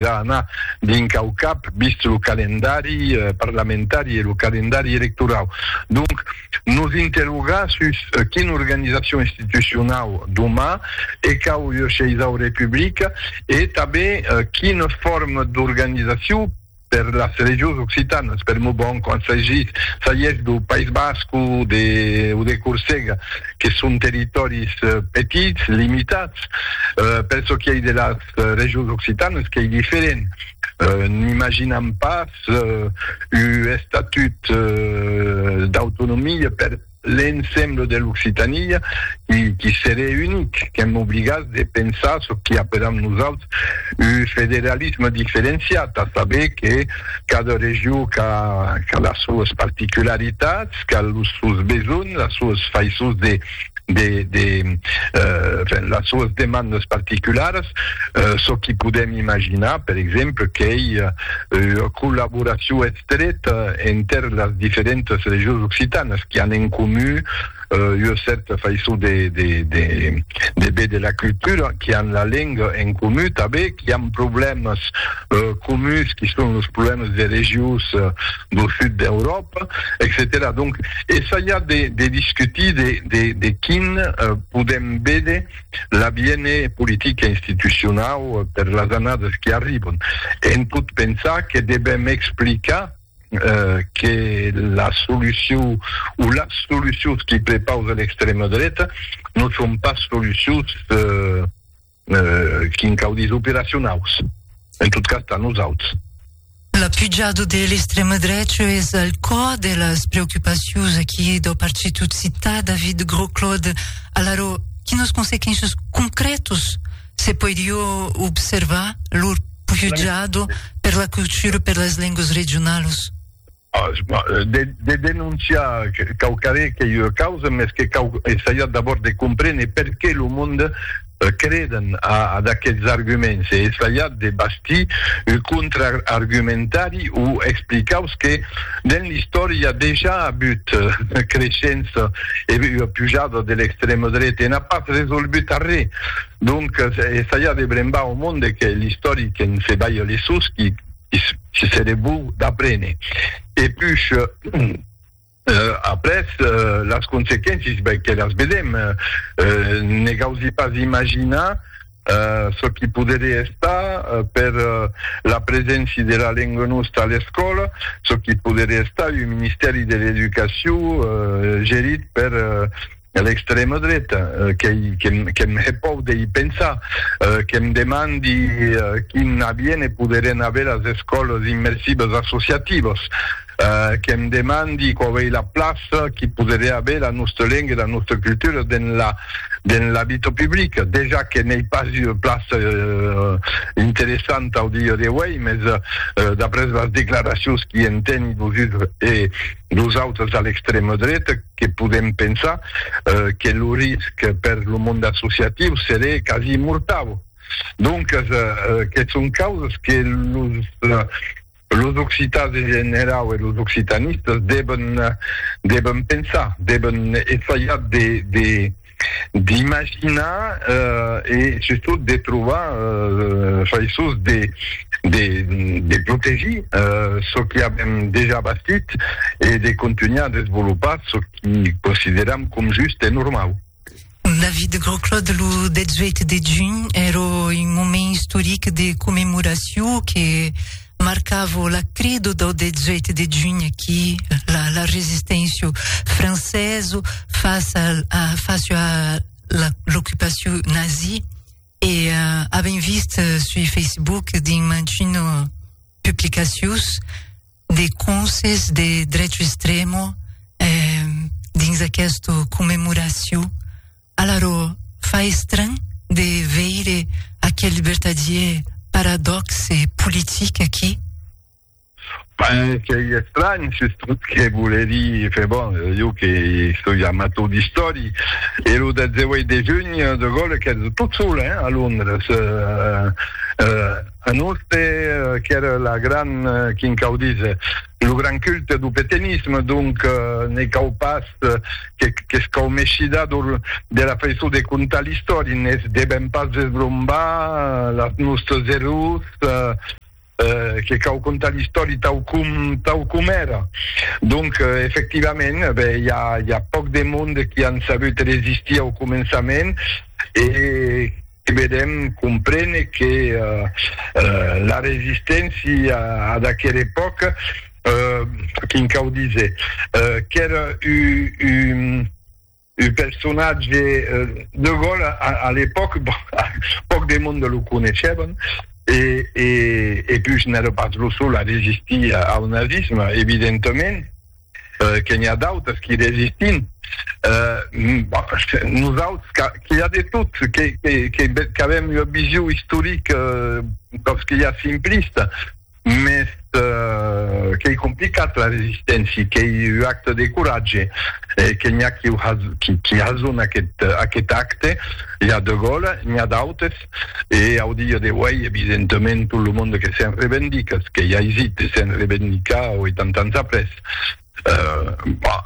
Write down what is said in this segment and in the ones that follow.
Deja ana dinc au cap, vist lo calendari parlamentari e lo calendari electorau. Donc, nos interrogar sus quina organizacion institucionau doma e cau iursheisau republica e tanben quina forma d'organizaciu per las regions occitanas, per mon bon, quand s'agís dau País Basc o de Corsega, que son territòris petits, limitats, per çò qui ei de las. regions occitanes qu'ei diferent. N'imaginam pas un estatut d'autonomia per l'ensemble de l'Occitània qui serie unic, qu'èm obligats de pensar çò qui apèlam nosaltres un federalisme diferenciat, a saber que cada region qu'a las soas particularitats, qu'a los sòus besonh, las soas faisons de. de las soas demandas particularas, çò qui podèm imaginar, per exemple, qu'ei ua collaboracion estreta enter las diferentas regions occitanas qui an en comu ua cèrta faiçon de véder la cultura, qui an la lenga en comu tanben, qui an problèmas comuns qui son los problèmas de regions. do sud d'Euròpa, etcetèra. Donc, essaiar de, de discutir de, de, de quin eh, podem vede l'aviene politica institucionau eh, per las annadas qui arribon. En pot pensar que devem explicar eh, que la solucion o las solucions qui prepausa l'extrema dreta non son pas solucions eh, Quin caudis operacionaus, en tot cas tà nosauts. La pujada de l'extrema drecha es al còr de las preocupacions aquí dau partit occità David Grosclaude. Alara, quinas consequéncias concrètas se poiriá observar lor pujada per la cultura, per las lengas regionalas? De denonciar quauquaré qu'ei ua causa, mès que cau essaiar d'abòrd de comprene perqué lo monde creden a d'aqueths arguments e essaiar de bastir un contraargumentari o explicaus que dens l'istòria dejà a avut ua creishença e ua pujada de l'extrema dreta e n'a pas resolgut arré. Donc, essaiar de brembar au monde que l'istòric en se balha les susqui. si seré bon d'aprene e pus après las consequéncies ben que las vedem ne gausi pas imaginar çò qui poderé estar per la preséncia de la lenga nosta a l'escòla çò qui poderé estar un ministèri de l'educacion gerit per a l'extrèma dreta, qu'ei que'm hè pòur de i pensar, que'm demandi quin aviène poderien aver as escòlas immersives associativas, que'm demandi quau ei la plaça qui poderien aver la nòsta lenga e la nòsta cultura dens la dens la vita publica. Dejà que n'ei pas ua plaça interessanta au dia d'auei, mès d'après las declaracions qui èn tènir los uns e los autres a l'extrèma dreta que podèm pensar que lo risc per lo monde associatiu seré quasi mortau. Doncas, que son causas que los occitans en generau e los occitanistas deben pensar, deben essaiar de d'imaginar e sustot de trobar faisons de protegir çò qui avèm dejà bastit e de contunhar a desvolopar çò qui consideram com just e normau. David Grosclaude, lo 18 de junh èra un moment istoric de commemoracion que marcavo la crido dau 18 de junh qui la, la resisténcia francesa face à, à, face à l'occupation nazie e uh, avem vist uh, sur Facebook din mantino publicacions de conses de drecho extremo eh, dins aquesta commemoració Alara fa estranh de veire aquel vertadièr paradòxe politic aquí? Ben, qu'ei estranh, s'es tot ce que vole dir, fe bon, jo que soi amator d'istòri, e lo 18 de junh de Gaulles qu'èra tot sol, hein, a Londres, un oste qu'èra la gran, quin quau díser, Lo gran culte du petenisme, donc, ne cau pas qu'escaumesida de la faiçon de contar l'istòria. Ne's devèm pas desbrombar las nòstres errors, que cau contar l'istòria tau com tau com èra. Donc, efectivament, ben, i a i a pauc de monde qui an sabut resistir au començament e, Vedèm comprene que la resisténcia ad aquera epòca, quin cau díser, qu'èra un personatge, De Gaulle a l'epòca pòc de monde lo coneishevan e pus n'èra pas lo sol a resistir au nazisme, evidentament. que n'i a d'autres qui resistin, nosauts qu'i a de tot, qu'avèm ua vision istorica totz que ja simplista, mès qu'ei complicat la resisténcia, qu'ei ua acte de coratge, que n'i a qui hasona aquest acte, i a De Gaulle, n'i a d'autres. E au dia d'auèi, evidentament, tot lo monde que se'n revendica, es qu'ei aisit de se'n revendicar 80 ans après. Bah,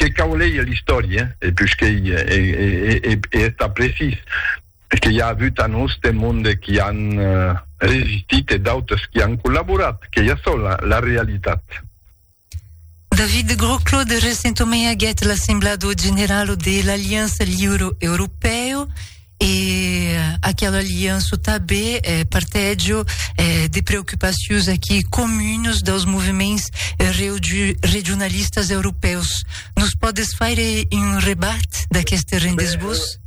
que cau leir l'istòria, e pus qu'ei e estar precís, es que i a avut a noste monde qui an resistit e d'autres qui an collaborat, qu'ei açò la realitat. David Groclo de Resentomé aguèt l'assemblado general de l'Aliança Liuro Europèo e aquela aliança tabé eh, partègio eh, de preocupacions aquí comuns dels moviments regionalistas europèus. Nos pòdes faire un rebat d'aqueste rendesbós?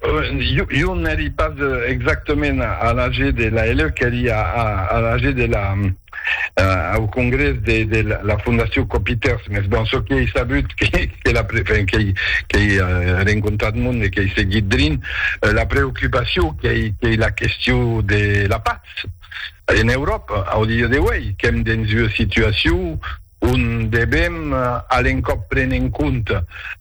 Jo n'èri pas exactament a l'AG de l'ALE, qu'èri a l'AG de la, au congrès de la Fondacion Copiters, mès bon, çò qu'ei sabut, qu'ei rencontrat monde, qu'ei seguit drin la preocupacion qu'ei la question de la patz en Euròpa au dia d'auei, qu'èm dens ua situacion ont devèm a l'encòp prene en compte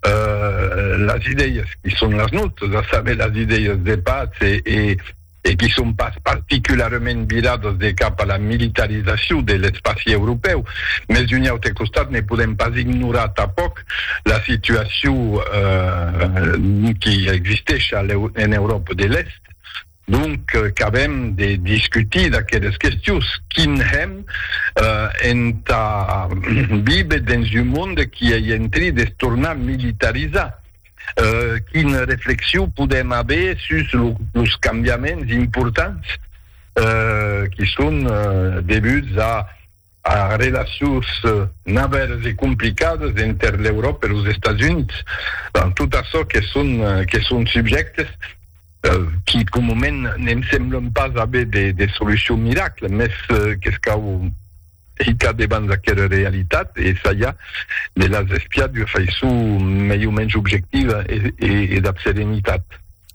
las idèias qui son las nòstas, a saber, las idèias de patz e qui son pas particularament viradas de cap a la militarizacion de l'espaci europèu. Mès d'un aute costat ne podèm pas ignorar tanpòc la situacion qui existesha en Euròpa de l'Èst, Donc, qu'avèm de discutir d'aqueles questions, quin hèm entà viver dens un monde qui ei en tri de se tornar militarizar? Quina reflexion podèm aver sus los cambiaments importants qui son devuts a. As relacions navales e complicadas enter l'Euròpa e los Estats Units, ben, tot açò que son, que son subjèctes qui comument ne'm semblon pas aver de solucion miracle, mès qu'es cau hitar debans aquera realitat e essajar de las espiar d'ua faiçon mai o mens objectiva e dab serenitat.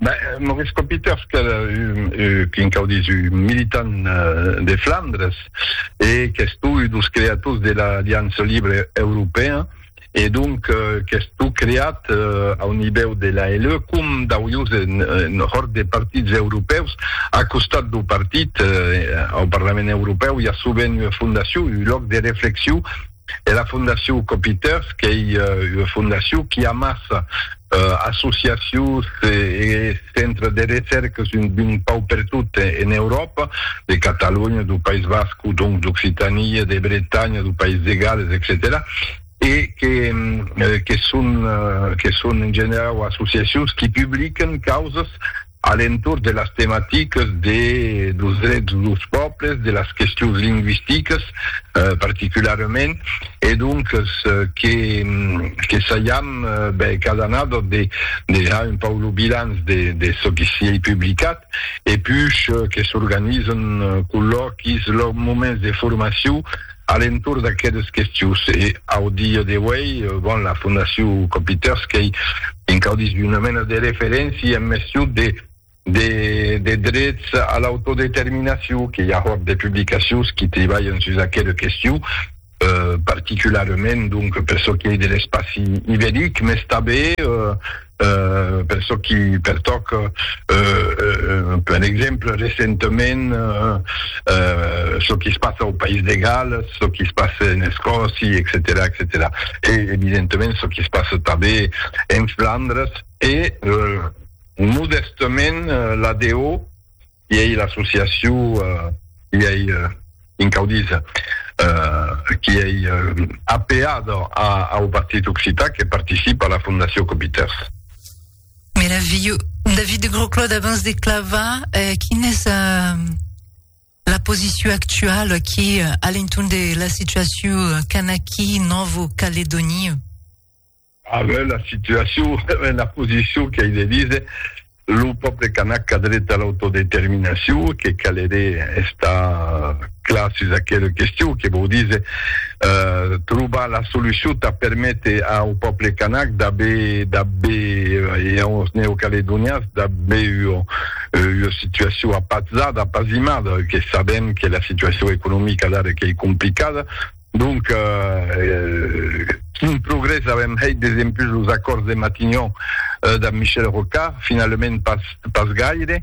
Ben, Maurice Copiters qu'èra un, quin cau dire, un militant de Flandres e qu'es tu un dos creators de l'Aliança Libre Europèa e donc qu'es tu creat au nivèu de l'ALE com dau ius en hòrt de partits europèus a costat dau partit au Parlament Europèu i a sovent ua fondacion, un lòc de reflexion E la Fondacion Copiters qu'ei ua fondacion qui amassa associacions e centres de recèrques d'un pau pertot en Euròpa, de Catalonha, dau País Basc, donc d'Occitània, de Bretanha, dau País de Gales, etcetèra E que son en generau associacions qui publiquen causas a l'entorn de las tematiques de los drets dels pòbles, de las questions lingüisticas particularament, e donques que que saiam ben cada annada de de har un pauc lo bilanç de de çò que siei publicat e puish que s'organizan collòquis, lor moments de formacion A l'entorn d'aqueles questions e au dia d'auei, bon, la Fondacion Copiters qu'ei encaudís d'una mena de referéncia en mestion de de drets a l'autodeterminacion, que i a hòrt de publicacions qui tribalhan sus aquela question, particularament donc per çò qui ei de l'espaci iberic, mès tanben, Per çò qui pertòca un plan exemple recentament çò qui es passa au País de Galles, çò qui es passa en Escòcia, etcetèra, etcetèra. E evidentament çò qui es passa tanben en Flandres e modèstament l'ADO I ei l'associacion, i ei un caudís qui ei apeat au Partit Occitan que participe a la Fondacion Copiters. Meravilhós. David de Grosclaude, abans de clavar, quina es la posició actuala aquí a l'entorn de la situacion Kanaki, Novo Caledònia? Avèm la situacion en la posicion qu'ei de díser, lo pòble canac qu'a dret a l'autodeterminacion, que caleré estar clar sus aquela question, que vòu díser trobar la solucion tà perméter au pòble canac d'aver, d'aver, e aus neocaledonians d'aver ua situacion apatzada, apazimada, que sabèm que la situacion economica d'ara qu'ei complicada. Donc, quin progrès avèm hèit desempus los acòrds de Matignon damb Michel Rocard? Finalement pas gaire,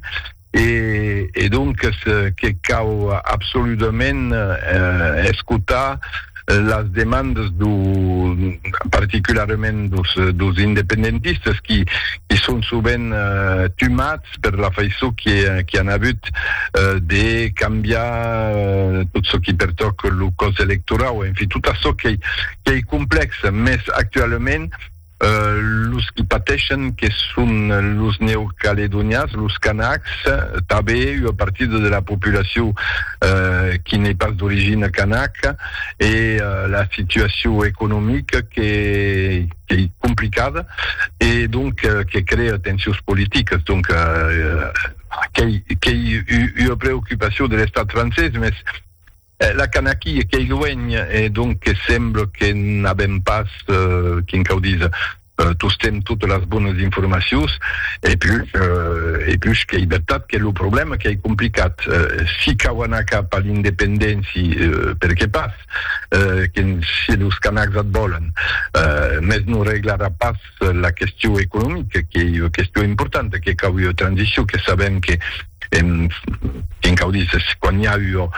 e donques que cau absoludament escotar las demandes particularament dos independentistes qui son sovent tumats. fòrtas per la faiçon qu'i an avut de cambiar tot çò qui pertòc lo còs electorau, enfin, tot açò qu'ei complèx, mès actualament los qui pateishen que son los Neocaledonians, los Kanaks, tanben ua partida de la populacion qui n'ei pas d'origina kanaka, e la situacion economica que qu'ei complicada e donc que crea tensions politicas. Donc qu'ei qu'ei ua preocupacion de l'Estat francés, mès la can aquí e qu'ei luenh e donc que sembla que n'avem pas, quin cau díser, tostemp totes las bonas informacions. E pus e pus qu'ei vertat que lo problèma qu'ei complicat. Si cau anar cap a l'independéncia, per qué pas? Cat, que si los Canacs at vòlen, mès non reglarà pas la question economica, qu'ei ua question importanta, que cau ua transition, que sabèm que quin cau díser, quan i a ua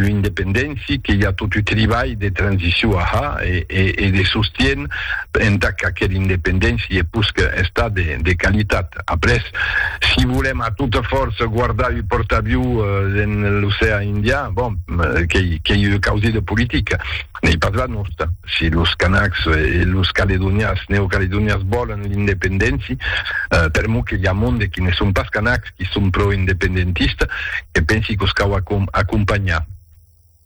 independéncia, que i a tot un tribalh de transition a har e de sostien entà qu'aquela independéncia i e pus qu'està de qualitat. Après, si volèm a tota fòrça guardar un pòrt'avion dens l'ocean Indian, bon, qu'ei ua causa de politica, n'ei pas la nòsta. Si los Kanaks e los Caledonians, Neocaledonians, vòlen l'independéncia, per mon que i a monde qui ne son pas Kanaks qui son pro-independentistes, que pensi que'us cau acompanhar.